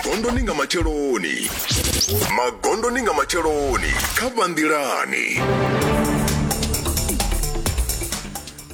magondoni nga matsheloni magondoni nga matsheloni kha vhanḓilani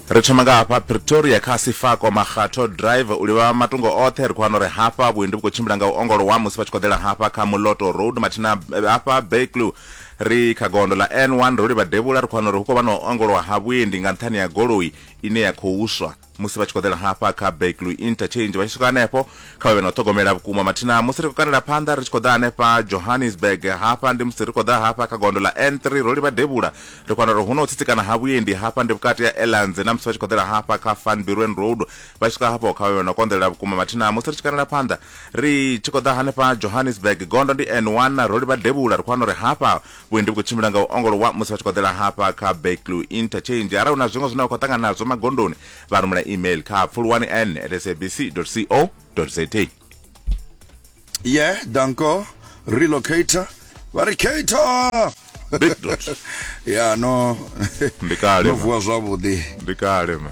ri thoma nga hafha pretoria kha sifako makgatho drive u livha matungo oṱhe ri khou wana uri hafha vhuendi vhu khou tshimbila nga u ongolowa musi vha tshi khou ḓela hafha kha muloto road mathina eh, hafha berklew ri kha gondo ḽa n1 ro livha devhula ri khou wana uri hu khou vha na u ongolowa ha vhuendi nga nṱhani ya goloi ine ya khou swa musi vha tshi khou ḓela hafha kha baklu interchange vha tshi swika hanefho kha vhavhe na u ṱhogomela vhukuma mathina musi ri khou kandela phanḓa ri tshi khou ḓa hanefha johannesburg hafha ndi musi ri khou ḓa hafha kha gondo ḽa n3 ro livha devhula ri khou wana uri hu na u tsitsikana ha vhuendi hafha ndi vhukati ya elans na musi vha tshi khou ḓela hafha kha fanbirwen road vha tshi swika hafho kha vhavhe na u konḓelela vhukuma mathina musi ri tshi kandela phanḓa ri tshi khou ḓa hanefha johannesburg gondo ndi n1 ro livha devhula ri khou wana uri hafha vhuendi vhu khou tshimbila nga u ongolowa musi vha tshi khou ḓela hafha kha backlu interchange arali hu na zwiṅwe zwine vha khou ṱangana nazwo magondoni vha rumela email kha pfulwani n at sabc co za yeah danko relocator vha ri cator ya no ndi kale no vuwa zwavhuḓi ndi kale ma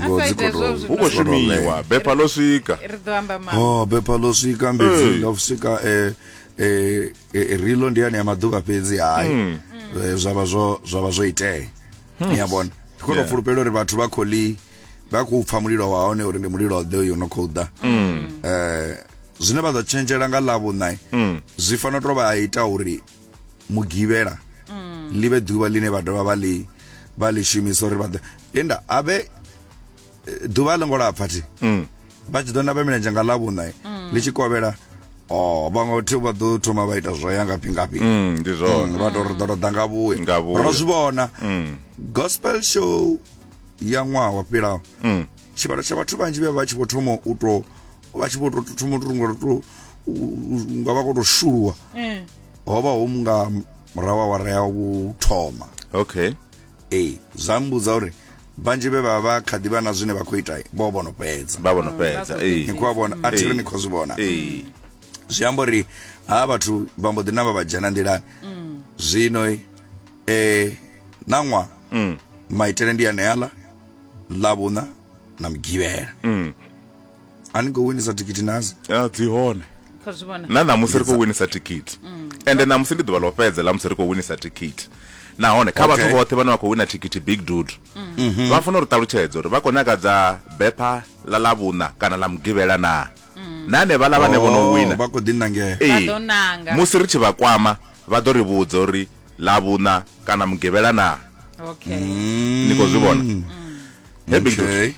Ngoho dzi khou tou- hu khou shumiwa bepa ḽo swika ri ḓo amba ma oh bepa ḽo swika mbedzi ḽo swika eh, eh, eh, rilo ndi yane ya maḓuvha fhedzi hayi Hmm. Eh, zwa vha zwo zwa vha zwo itea ni a vhona ndi khou tou Yeah. fulufhela uri vhathu vha khou ḽi vha khou pfa mulilo wa hone uri ndi mulilo ḓe uyo no khou ḓa Hmm. Eh, zwine vha ḓo tshenzhela nga ḽavhuṋa Hmm. zwi fanela u tou vha ita uri mugivhela mm. ḽi vhe ḓuvha ḽine vha dovha vha ḽi vha ḽi shumisa uri vha ḓo linda a vhe eh, ḓuvha a ḽo ngo lapfa thi mm. vha tshi ḓo namba milenzhe nga ḽavhuṋa eh, mm. ḽi tshi kovhela o oh, vhaṅwe thi vha ḓo thoma vha ita zwo ya ngafhi ngafhi ndi zwone vha tou ri ḓo tou ḓa nga vhuya ro zwi vhona gospel show ya ṅwaha wa fhilaho tshivhalo tsha vhathu vhanzhi vhe vha tshi vho thoma u tou vha tshi vho to thoma to runga to nga vha koto shuluwa eh. ho vha ho munga murahu wa wara ya u thoma okay eh zwa mbudza uri vhanzhi vhe vha vha kha ḓivha na zwine vha khou ita vho vhono fhedza vha vhono fhedza eh. ni khou vhona a thiri eh. ni khou zwi vhona eh. zwi amba uri ha vhathu vha mbo ḓi namba vha dzhena nḓilani mm. zwino eh nangwa mm. maitele ndi aneala ḽa vhuna na mugivhela mm. ani go winisa thikhithi nadzo ya dzi hone Kha zwi vhona. na ṋamusi ri khou winisa thikhithi ende ṋamusi ndi ḓuvha ḽo fhedza ḽa musi ri khou winisa thikhithi nahone kha vhathu Okay. vhoṱhe vhane vha khou wina thikhithi big dude vha funa uri ṱalutshedza uri vha khou nyaka dza bepha ḽa ḽa vhuṋa kana ḽa mugivhela na na hanevhaḽa vhane vho no wina Oh, vha khou ḓi nangea Ee. Vha ḓo nanga. musi ri tshi vha kwama vha ḓo ri vhudza uri ḽa vhuṋa kana mugivhela na Okay. ni khou zwi vhona Hey, big dude. okay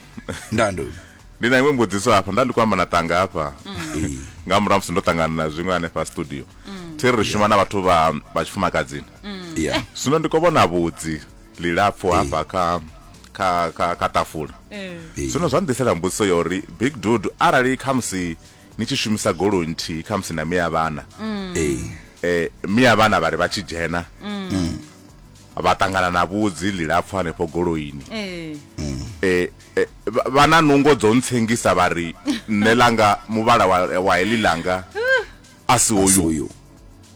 ndando ndi na iṅwe mbudziso hafha nda ndi khou amba na tanga hafha nga murahu musi ndo ṱangana na zwiṅwe hanefha studio thi ri shuma na vhathu vha vha tshifumakadzini yeah zwino ndi khou vhona vhudzi lilapfu hafha kha kha kha kha tafula Eh. Eh. zwino zwa nḓisela mbudziso ya uri big dude arali khamusi ni tshi shumisa goloi nthihi khamusi na miya vhana eh eh miya vhana vhari vha tshi dzhena vha ṱangana na vhudzi lilapfu hanefho goloini Eh. eh Eh, vha- vha na nungo dzo ntsengisa vha ri nṋe langa muvhala wa, wa heḽi langa a si hoyu soyo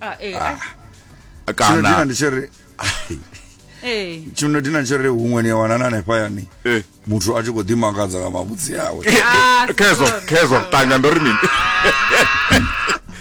Ah, eh, ah, tshino dina kana ndi tshiri eh. tshino dina tshiri huṅwe ni a wana na hanefha yani Eh. muthu a tshi khou ḓimakadza nga mavhudzi awe Ah, khezwo sorry. khezwo tanga ndo ri mini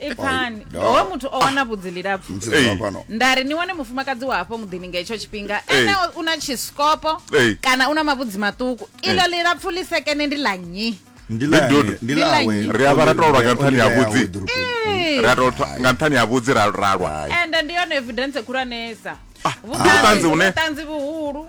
ipfani Ai, howe muthu o wana vhudzi lilapfu nda ri ni wane mufumakadzi wa hafho muḓini nga hetsho tshifhinga ene u na tshisikopo kana u na mavhudzi maṱuku iḽo lilapfu ḽi sekene ndi ḽa nnyi ri avha ra tolwa nga nṱhani ha vhudzi nga nṱhani ha vhudzi ra lwa ende ndi yone evidence khulwanesa ah, vhuṱanzi vhuhulu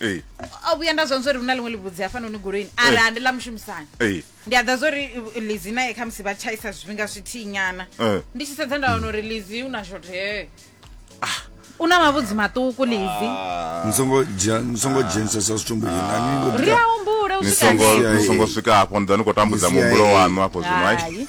Ee. o vhuya nda zwa zwa uri hu na ḽiṅwe ḽivhudzi hafhanoni goloini ara ndi ḽa mushumisani Ee. ndi a ḓa zwa uri uh, lizi naye khamusi vha tshaisa zwifhinga zwithihi nyana Eh. ndi tshi sedza nda wana uri lizi u na shothe u na mavhudzi maṱuku lizi ni songo dzhia ni songo dzhenisesa zwithu mbuyela ni ngo ri ḓa a humbule u ni swika songo hanefho. ni songo swika hafho nda ni khou tambudza Misia, muhumbulo eh. waṋu hafho zwino ai Hai.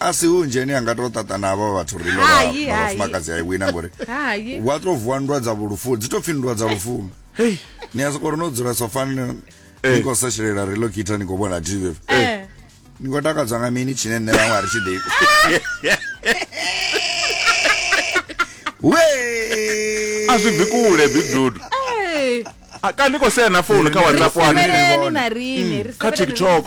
a si hu nzheni anga to ṱaṱa na avha vhathu ri lo vhafumakadzi ai wina ngori wa to vuwa ndwa dza vhulufu dzi to pfhi ndwa dza lufuno ni a sokori no dzula sofani ni eh. khou sashelela relokita ni khou vhona tv eh. eh. ni khou takadzwa nga mini tshine nṋe vhaṅwe a ri tshi ḓiku we a zwi bvi kule bidudu a ka ni khou sea na founu kha whatsapp wani kha tiktok